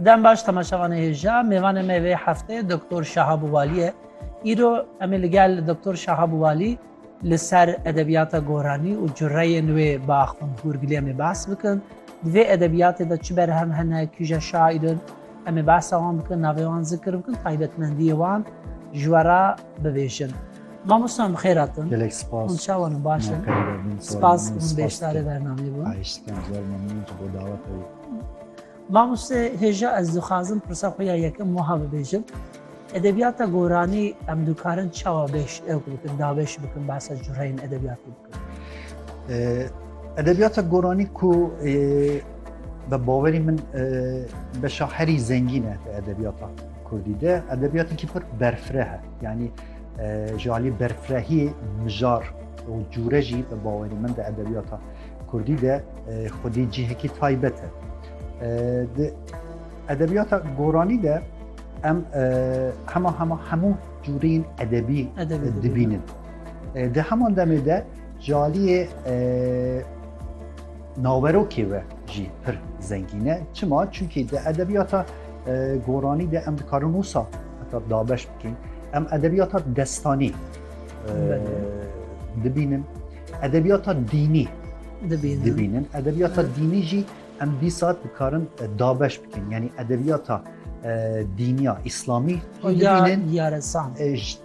Dem baş temaşevanê hêja mêvanê me vê heftê Doktor Şahab Walî ye. Îro em ê li gel Doktor Şahab Walî li ser edebiyata goranî û cureyên wê bi Axund Hûrgilê em ê behs bikin. Di vê edebiyatê de çi berhem hene, kî je şaîr in, Em ê behsa wan bikin, navê wan zikir bikin, taybetmendiyê wan ji we re bibêjin. Mamosta bi xêr hatin. Gelek spas. Hûn çawa ne baş in? Spas hûn beşdarê bernameyê bûn. Xahiş dikim zor memnûn ji bo daweta wî. Mamoste hêja ez dixwazim pirsa xwe ya yekem wiha bibêjim. Edebiyata goranî em dikarin çawa bêş ew bikin, dabeş bikin behsa cureyên edebiyatê. Edebiyata Goranî ku bi bawerî min beşa herî zengîn e di edebiyata Kurdî de edebiyatîkî pir berfireh e yanî ji alî berfirehî mijar û cûre jî bi bawerî min di edebiyata Kurdî de xwedî cihekî taybet e. Di edebiyata Goranî de em hema hema hemû cûreyên edebî dibînin. Di heman demê de caliyê naverokê we jî pir zengîne. Çima? Çunkî di edebiyata goranî de em dikarin wisa heta dabeş bikin. Em edebiyata destanî dibînin. Edebiyata dînî dibînin. Edebiyata dînî jî em dîsa dikarin dabeş bikin. Yani edebiyata dîniya İslami dibînin. Yare san.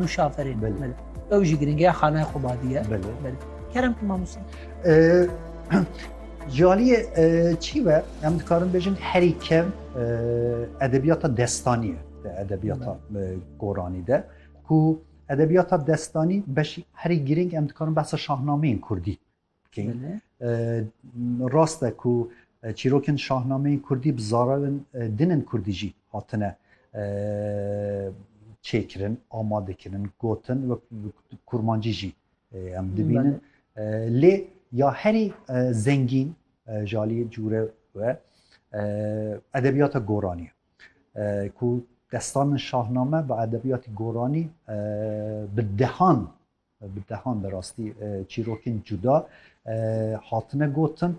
Û şaferê ew jî giringeya xanaya xwebadiye kerem ku mamosta Caliyê çî ve em dikarin bêjin herî kev edebiyata destaniye de edebiyata goranî de ku edebiyata destanî beşî herî giring em dikarin behsa şahnameyên kurdî Rast e ku çîrokên şahnameyên kurdî bi zararên din ên kurdî jî hatine çêkirin, amadekirin, gotin wek bi kurmancî jî em dibînin. Lê ya herî zengîn ji aliyê cûre ve edebiyata goranî ye. Ku destanên şahname bi edebiyatê goranî bi dehan Bi dehan bi rastî çîrokên cuda hatine gotin.